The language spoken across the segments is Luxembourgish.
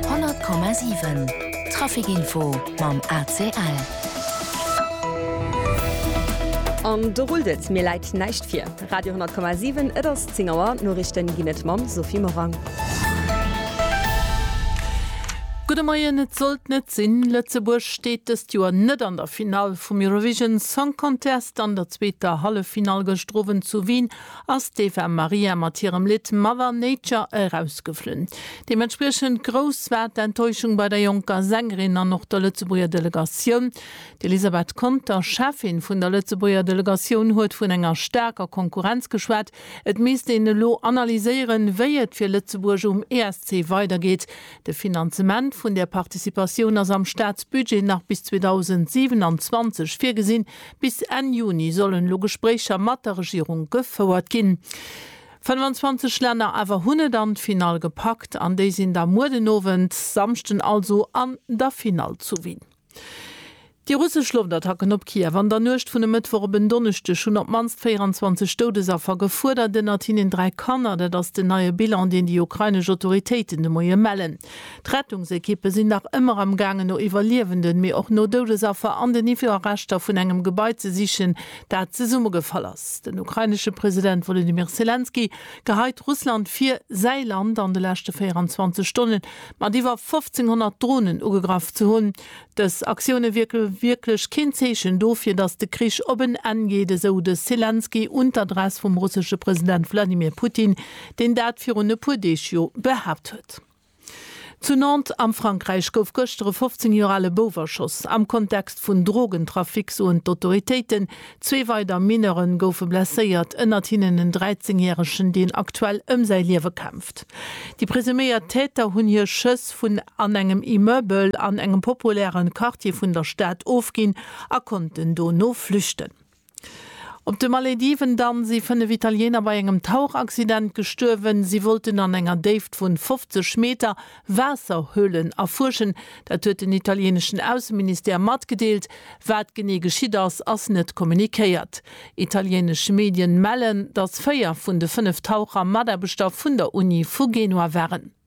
100,7 Trafic Info mam ACL. An do rullt et, mir läit näischt vir. Radio 10,7, et ass 10 Auer, d'Noriichten ginn et mam Sophie Morang. Gudde Moien, et sollt net sinn, Lëtzebuerg steet dëst Joer net an der Finall vum Eurovision Song Contest. An der zweeter Halleffinall gëscht Owend zu Wien ass d'Eva Maria mat hirem Lidd Mother Nature erausgeflunn. Deementspriechend grouss war d'Enttäuschung bei der jonker Sängerin an och der Lëtzebuerger Delegatioun. D'Elisabeth Conter, Cheffin vun der Lëtzebuerger Delegatioun, huet vun enger staarker Konkurrenz geschwat. Et misst een elo analyséieren, wéi et fir Lëtzebuerg um ESC weidergeet. De Finanzement vun där Participatioun ass am Staatsbudget nach bis 2027 virgesinn, Bis Enn Juni sollen elo Gespréicher mat der Regierung gefouert ginn. 25 Länner awer hunn et an d'Finall gepackt an déi sinn da muer den Owend, Samschden also, an der Finall zu Wien. Déi russesch Loftattacken op Kiew an der Nuecht vun e Mëttwoch op en Donneschdeg hunn op d'mannst 24 Doudesaffer gefuerdert, ënnert hinnen dräi Kanner. Dat ass den neie Bilan, deen déi ukrainesch Autoritéiten de Moie mellen. D'Rettungsekippe sinn nach ëmmer am gaangen no Iwwerliewenden, mee och no Doudesaffer an den Iwwerreschter vun engem Gebai ze sichen, dat zesummegefall ass. Den ukrainesche President Wolodymyr Selenskyj geheit Russland vir, säi Land an de leschte 24 Stonne mat iwwer 1.500 Dronen ugegraff ze hunn. Dës Aktioune wierke wierklech keen Zeechen dofir, datt de Krich op en Enn geet, esou de Selenskyj un d'Adress vum russesche President Wladimir Putin, deen dat virun e puer Deeg jo behaapt huet. Stad. Zu Nantes am Frankräich gouf gëschter e 15 Joer ale Bouf erschoss. Am Kontext vun Drogentrafic soen d'Autoritéiten, zwee weider Mineure goufe blesséiert, ënnert hinnen en 13 Järegen, deen aktuell ëm säi Liewe kämpft. Déi presuméiert Täter hunn hir Schëss vun an engem Immeubel an engem populäre Quartier vun der Stad ofginn a konnten dono flüchten. Op de Malediven dann si 5 Italiener bei engem Tauchaccident gestuerwen. Si wollten an enger Déift vun 50 Meter Waasserhöhlen erfuerschen. Dat huet den italieneschen Ausseministère matgedeelt. Wat genee geschitt ass, ass net kommunikéiert. Italienesch Medien mellen, datt 4 vun de 5 Taucher Mataarbechter vun der Uni vu Genua waren.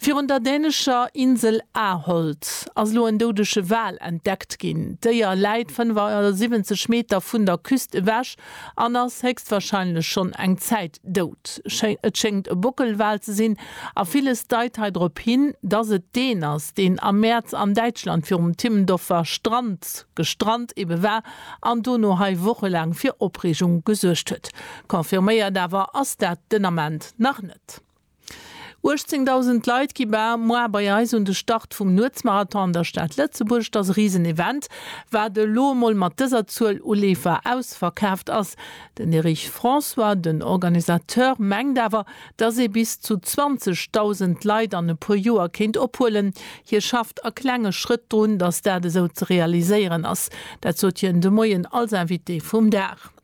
Virun der dänescher Insel Ahold ass elo en doudege Wal entdeckt ginn. D'Déier läit 75 Meter vun der Küst ewech an ass héchstwarscheinlech schonn eng Zäit dout. Et schéngt e Bockelwal ze sinn a villes deit hei drop hin, dass et deen ass, deen am Mäerz an Däitschland virum Timmendorfer Strand gestrant ebe war an dono hei wochelaang fir Opreegung gesuergt huet. Confirméiert awer ass dat den Ament nach net. 18.000 Leit gi bar moar bei eis un de Start vum Nuetsmarathon an der Stad Lëtzebuerg. Et ass e risen Event, wat elo emol mat dëser Zuel u Leefer ausverkaaft ass. Den Erich François, den Organisateur, mengt awer, dass ee bis zu 20.000 Leit an e puer Joer kéint ophuelen. Hie schafft a klenge Schrëtt drun, dass dat esou ze realiséieren ass. Dat sot hien de Moien als Invité vum Dag.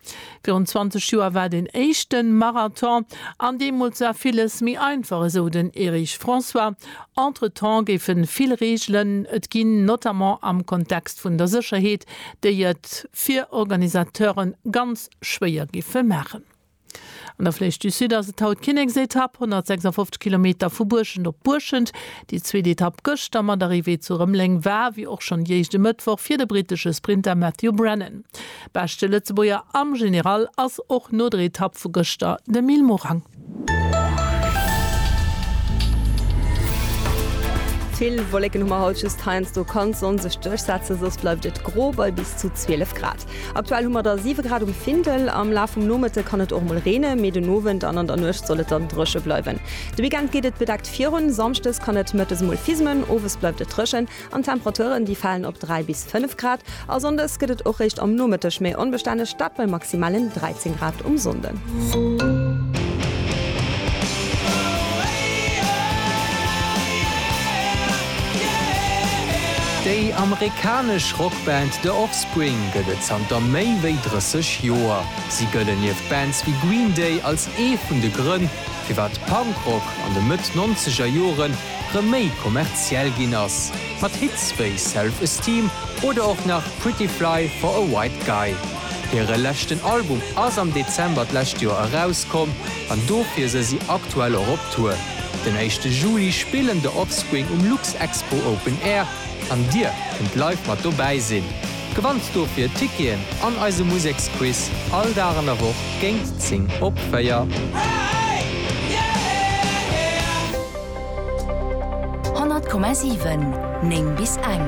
Virun 20 Joer war deen éischten Marathon an deemools war villes méi einfach, esou den Erich François. Entretemps géife vill Reegelen et ginn, notamment am Kontext vun der Sécherheet, déi et fir Organisateure ganz schwéier géife maachen. An der Flèche du Sud ass et haut d'Kinneksetapp, 156 Kilometer vu Buerschent op Buerschent. Déi zweet Etapp gëschter mat Arrivée zu Rëmeleng war, wéi och schonn déi éischt e Mëttwoch, fir de brittesche Sprinter Matthew Brennan. Beschte Lëtzebuerger am General ass och no der Etapp vu gëschter de Mil Morang. Vill Wolleken hu mer haut, just heiansdo kann d'Sonn sech duerchsetzen, soss bleift et gro bei bis zu 12 Grad. Aktuell hu mer der 7 Grad um Findel. Am Laf vum Nomëtte kann et och mol reene, mee den Owend an an der Nuecht soll et dann dréche bleiwen. De Weekend geet et bedeckt virun, samschdes kann et mëttes mol fismen, owes bleift et dréchen. An d'Temperaturen, déi falen op 3 bis 5 Grad. A Sonndes gëtt et och réischt am Nomëtteg méi onbestänneg, dat bei maximalen 13 Grad um Sonnden. Déi amerikanesch Rockband The Offspring gëtt et zanter méi wéi 30 Joer. Si gëllen nieft Bands wéi Green Day als ee vun de Grënn, firwat Punkrock an de Mëtt-Nonzegerjoren rëm méi kommerziell ginn ass, mat Hits wéi Self Esteem oder och nach Pretty Fly for a White Guy. Hire leschten Album ass am Dezember d'lescht Joer erauskomm an dofir se si aktuell och op Tour. Den éischte Juli spillen The Offspring um Luxexpo Open Air an dir kënnt live mat dobäi sinn. Gewannt dofir Ticketen an eise Museksquiz all Dag an der Woch géint 10 op 4. 100,7 9 bis eng.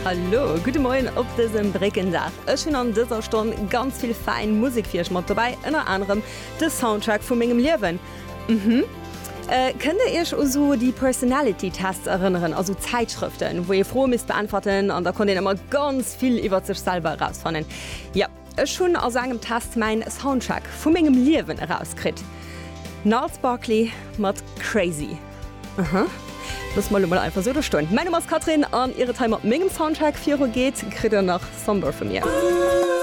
Hallo, gudde Moien op dësem Bréckendag. Ech hunn an dëser Stonn ganz vill fäin Musek fir iech mat dobäi, ënner anerem de Soundtrack vu mengem Liewen. Mhm. Kënnt Dir Iech u sou déi Personality Tests erënneren, a sou Zäitschrëften, wou ee Froe misst beäntwerten an da konnt een ëmmer ganz vill iwwert sech selwer erausfannen? Jo. Ech hunn a saengem Test mäin Soundtrack vu mengem Liewen erauskritt, Gnarls Barkley mat Crazy. Aha, loosse mer elo mol einfach sou do stoen. Mäin Numm ass Catherine an ier et hei mat mengem Soundtrack viru geet, kritt der nach Somber vu mir.